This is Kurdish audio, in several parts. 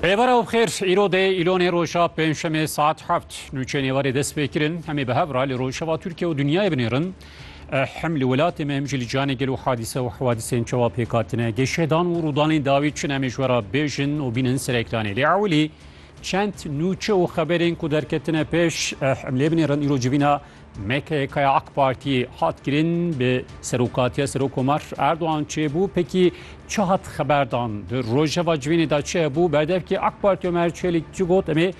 Rêbera û bixêr îro dê îlonê roja pêncşemê saet heft nûçeyên êvarê dest pê kirin hemê bi hev ra li rojheva Tirkiye û dinyayê binêrin hem li welatê me hem jî li cihanê gelo hadîse û hewadîsên çawa pêk hatine geşedan û rûdanên dawî çin em ê ji we re bêjin û bînin ser ekranê lê ewilî çend nûçe û xeberên ku derketine pêş em lê binêrin îro civîna MKK'ya AK Partiyê hat kirin bi serokatiya Serokkomar Erdogan çêbû pekî çi hat xeberdan di rojeva civînê de çi hebû berdevkî AK Partiya Ömer Çelik çi got em ê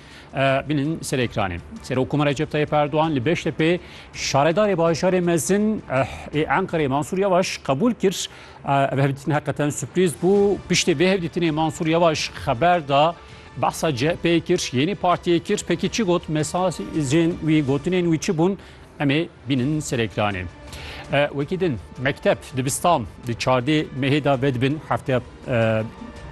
binin ser ekranê. Serokkomar Recep Tayyip Erdogan li Beştepê şaredarê bajarê mezin ê Enqerê Mansur Yavaş qebûl kir. Ev hevdîtin heqeten sürprîz bû. Piştî vê hevdîtinê Mansur Yavaş xeber da Behsa CHP'yê kir, yênî partiyê kir, pekî çi got, mesajên wî, gotinên wî çi bûn, em ê bînin ser ekranê. E, wekî din, mekteb, dibistan di çardê mehê de vedibin, hefteya e,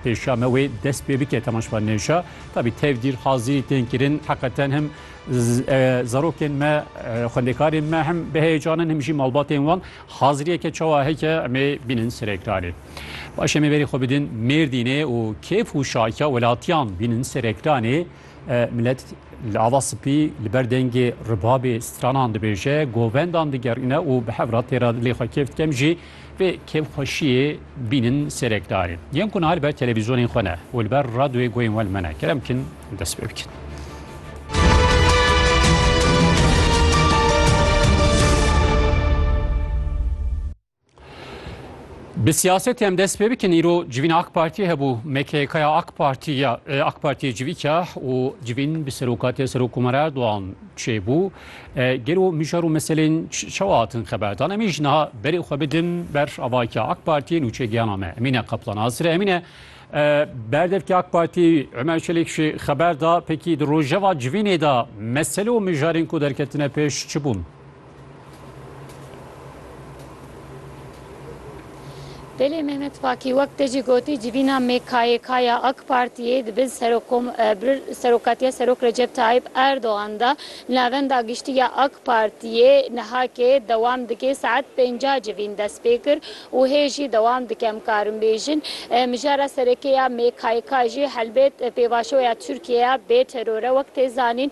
pêşiya me wê dest pê bike temaşva nêşa. Tabî tevdîr hazîrî tên kirin, heqeten him z- e, zarokên me, e, xwendekarên me him biheyecanin, him jî malbatên wan. Haziriyeke çawa heke em ê bînin ser ekranê. Baş em ê berî xwe bidin Mêrdînê û kêf û şahiya welatiyan bînin ser ekranê. Milet li ava spî li ber dengê ribabê stranan dibêje, govendan digerîne û bi hev re têra dilê xwe kêf dikem jî vê kêfxweşiyê bînin ser ekranê. Yên ku niha li ber televîzyonên xwe ne û li ber radyoyê guhên we li me ne kerem bikin dest pê bikin. Bi siyasetê em dest pê bikin îro civîna AK Partiyê hebû MKKya AK Partiya AK Partiyê civî keh û civîn bi serokatiya Serokkomar Erdogan çêbû. Gelo mijar û meselên çawa hatin xeberdan em îj niha berê xwe bidin ber avakya AK Partiyê nûçe giyana me. Emîne Kaplan Azire Emîne berdevkê AK Partiyê Ömer Çelik jî xeber da pekî di rojeva civînê de mesele û mijarên ku derketine pêş çi bûn? Belê Mehmet Fakî wek te jî gotî civîna MKYK ya AK Partiyê di bin serokatiya Serok Recep Tayyîp Erdogan de li navenda giştî ya AK Partiyê nihakê dewam dike saet pêncah civîn dest pê kir û hê jî dewam dike em karin bêjin mijara sereke ya MKYK jî helbet pêvajoya Tirkiyeye bê teror e wek tê zanîn.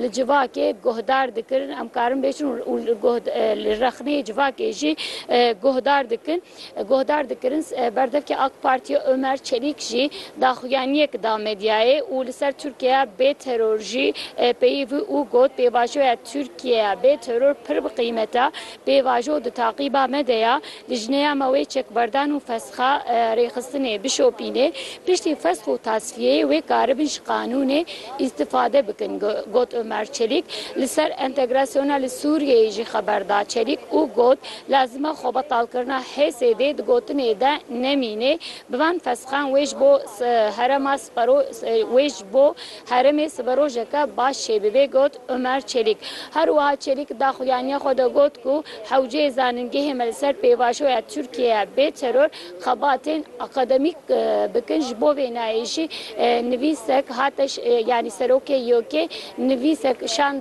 li civakê guhdar dikirin em karin bêjin û li rexneyê civakê jî guhdar dikin guhdar dikirin berdevkê ak Partiyê Omer Çelîk jî daxuyaniyek da medyayê û li ser Tirkiyeya bê teror jî peyivî û got pêvajoya Tirkiyeya bê teror pir bi qîmet e pêvajo di taqîba me de ya Lijneya me wê çekberdan û feska rêxistinê bişopîne. Piştî fesk û tasfiyeyê wê karibin ji qanûnê îstifade bikin, got Omer Çelîk. Li ser entegrasyona li Sûriyeyê jî xeber da Çelîk û got, Lazim e xwebetalkirina HSD'ê di gotinê de nemîne. Bi van feskan wê ji bo herema sipero wê ji bo Herêmê siberojeke baş çêbibe, got Omer Çelîk. Her wiha Çelîk da xuyaniya xwe de got ku hewceyê zanîngehê me li ser pêvajoya Tirkiyeyê bê teror xebatên akademîk bikin. Ji bo vê nayê jî nivîsek hate yanî serokê YOK'ê nivîsek şand.